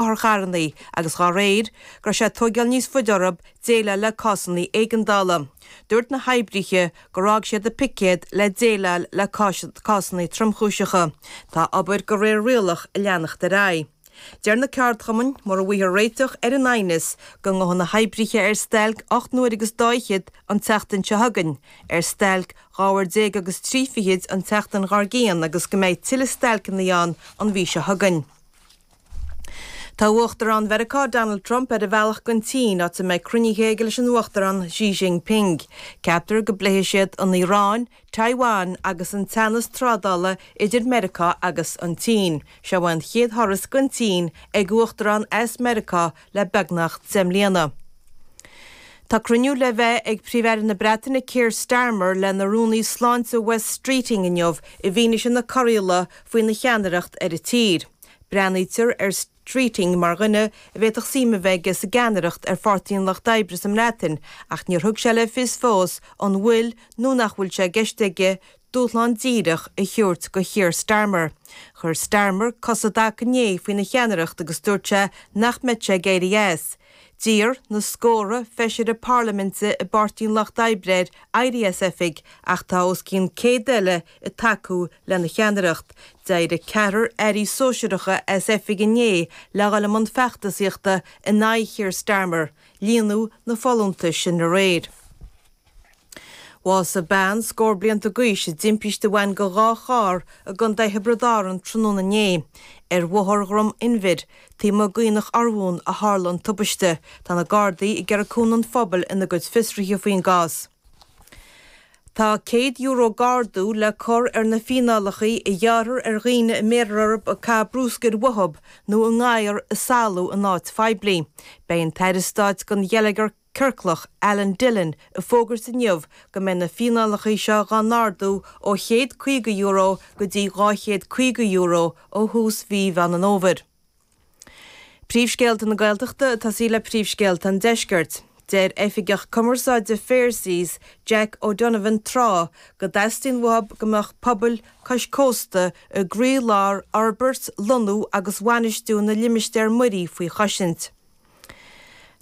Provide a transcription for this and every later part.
otharcharrannaí agus, dá réir, go raibh sé ag tóigeáil níos faide orthu déileáil le cásanna éigeandála. Dúirt na hoibrithe gur fhág siad a picéad le déileáil le cásanna tromchúiseacha. Tá obair go réir rialach ag leanacht ar aghaidh. Deir na ceardchumainn mura bhfaighthear réiteach ar an aighneas go ngabhfaidh na hoibrithe ar stailc ocht n-uaire agus dá fhichead an tseachtain seo chugainn, ar stailc dhá uair déag agus trí fichid an tseachtain dhár gcionn agus go mbeidh tuilleadh stailceanna ann an mhí seo chugainn. Tá Uachtarán Mheiriceá Donald Trump ar a bhealach gon tSín, áit a mbeidh cruinnithe aige leis an Uachtarán Xi Jinping. Ceaptar go bpléifidh siad an Iaráin, Taiwan agus an teannas trádála idir Meiriceá agus an tSín. Seo é an chéad thuras gon tSín ag Uachtarán as Meiriceá le beagnach deich mbliana. Tá cruinniú le bheith ag Príomh-Aire na Breataine Keir Starmer lena Rúnaí Sláinte Wes Streeting inniu i bhfianaise na corraíola faoina cheannaireacht ar an tír. Breathnaítear ar Streeting mar dhuine a bhféadfadh suim a bheith aige sa gceannaireacht ar Pháirtí an Lucht Oibre sa mBreatain ach níor thug sé le fios fós an bhfuil nó nach bhfuil sé i gceist aige dúshlán díreach a thabhairt do Keir Starmer. Chuir Starmer cos i dtaca inné faoina cheannaireacht agus dúirt sé nach mbeadh sé ag éirí as. D'iarr na scórtha feisire parlaiminte i bPáirtí an Lucht Oibre air éirí as oifig ach tá os cionn 100 eile ag tacú lena cheannaireacht. D'éirigh ceathrar airí sóisearacha as oifig inné le dhul i mbun feachtasaíochta in aghaidh Keir Starmer. Líonadh na folúntais sin aréir. Bhásaigh bean scór blianta d'aois i dtimpiste a bhain go dhá charr i gContae Thiobraid Árann tráthnóna inné. Ar Bhóthar Dhrom Inbhir, taobh amuigh d'Aonach Urmhumhan, a tharla an tubaiste. Tá na Gardaí ag iarraidh cúnamh an phobail ina gcuid fiosruithe faoin gcás. Tá €100 d'ardú le cur ar na fíneálacha a ghearrthar ar dhaoine a mbéarfar orthu ag caitheamh bruscair uathu nó a ngadhair ag salú in áit phoiblí. Beidh an tAire Stáit don Gheilleagar Ciorclach, Alan Dillon, ag fógairt inniu go mbeidh na fíneálacha seo dhá n-ardú ó €150 go dtí €250 ó thús mhí Mheán an Fhómhair. Príomhscéalta na Gaeltachta atá saor le príomhscéalta an deiscirt. Deir Oifigeach Cumarsáide Fair Seas, Jack O'Donovan Trá go dteastaíonn uathu go mbeadh pobail cois cósta i gcroílár fhorbairt, lonnú agus bhainistiú na limistéar muirí faoi choisint.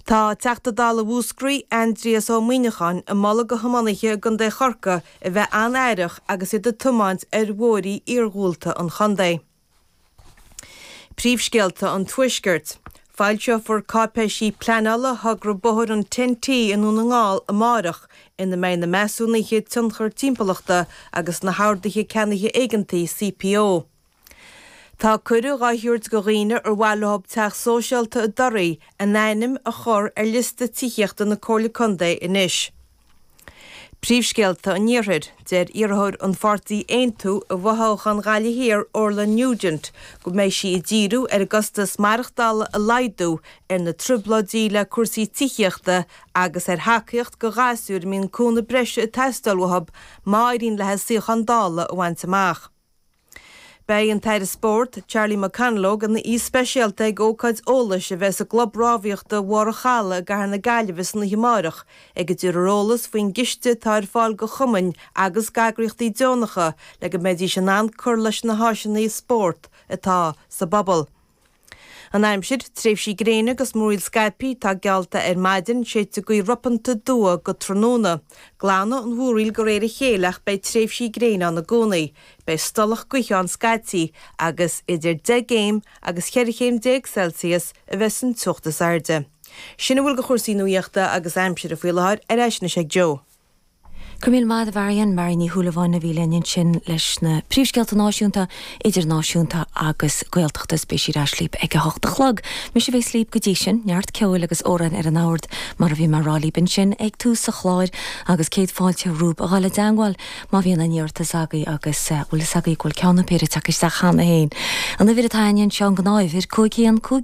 Tá Teachta Dála Mhúscraí, Aindrias Ó Muimhneacháin ag moladh go thiománaithe i gContae Chorcaí a bheith an-aireach agus iad ag tiomáint ar bhóithrí iargúlta an chontae. Príomhscéalta an Tuaiscirt. Foilseofar cáipéisí pleanála thogra bóthair an Ten-T i nDún na nGall amárach, ina mbeidh na measúnuithe tionchar timpeallachta agus na hOrduithe Ceannaithe Éigeantaí, CPO. Tá cuireadh á thabhairt do dhaoine ar mhaith leo teach sóisialta i dToraigh a n-ainm a chur ar liosta tithíochta na Comhairle Contae anois. Príomhscéalta an Iarthair, Deir iarrthóir an pháirtí Aontú i bhfothoghchán Ghaillimh Thiar Orla Nugent go mbeidh sí ag díriú ar an gcostas maireachtála a laghdú, ar na trioblóidí le cúrsaí tithíochta agus ar thacaíocht do ghasúir a mbíonn cúnamh breise ag teastáil uathu má éiríonn léi suíochán Dála a bhaint amach. Beidh an tAire Spóirt, Charlie McConalogue, ina aoi speisialta ag ócáid eolais a bheas i gClub Rámhaíochta Mhara Chadhla i gCathair na Gaillimhe san oíche amárach ag a dtabharfar eolas faoin gciste atá ar fáil go chumainn agus g'eagraíochtaí deonacha le go mbeidís in ann cur leis na háiseanna spóirt atá sa bpobal. An aimsir, Tréimhsí gréine agus múraíl scaipthe, tá geallta ar maidin, séidfidh gaoth ropanta aduaidh go tráthnóna. Glanfaidh an mhúraíl de réir a chéile ach beidh tréimhsí gréine ann i gcónaí. Beidh stolladh gaoithe ann scaití agus idir 10 gcéim agus cheithre chéim déag Celsius a bheas an teocht is airde. Sin a bhfuil de chúrsaí nuaíochta agus aimsire faoi láthair, ar ais anois ag Joe. Go raibh míle maith agat a Mhairéad, Mairéad Ní Shúilleabháin a bhí linn ansin leis na príomhscéalta náisiúnta, idirnáisiúnta agus Gaeltachta is beidh sí ar ais líb ag a hocht a chlog. Mise a bhéas líb go dtí sin. Neart ceoil agus amhráin ar an mbord mar a bhí mé a rá líb ansin ag tús an chláir agus céad fáilte romhaibh a dhul i dteangmháil má bhíonn aon iarratas agaibh agus bhfuil a fhios agaibh go bhfuil ceann nó péire ag teacht isteach cheana féin. An uimhir atá againn anseo an gnáth uimhir, cúig haon, cúig,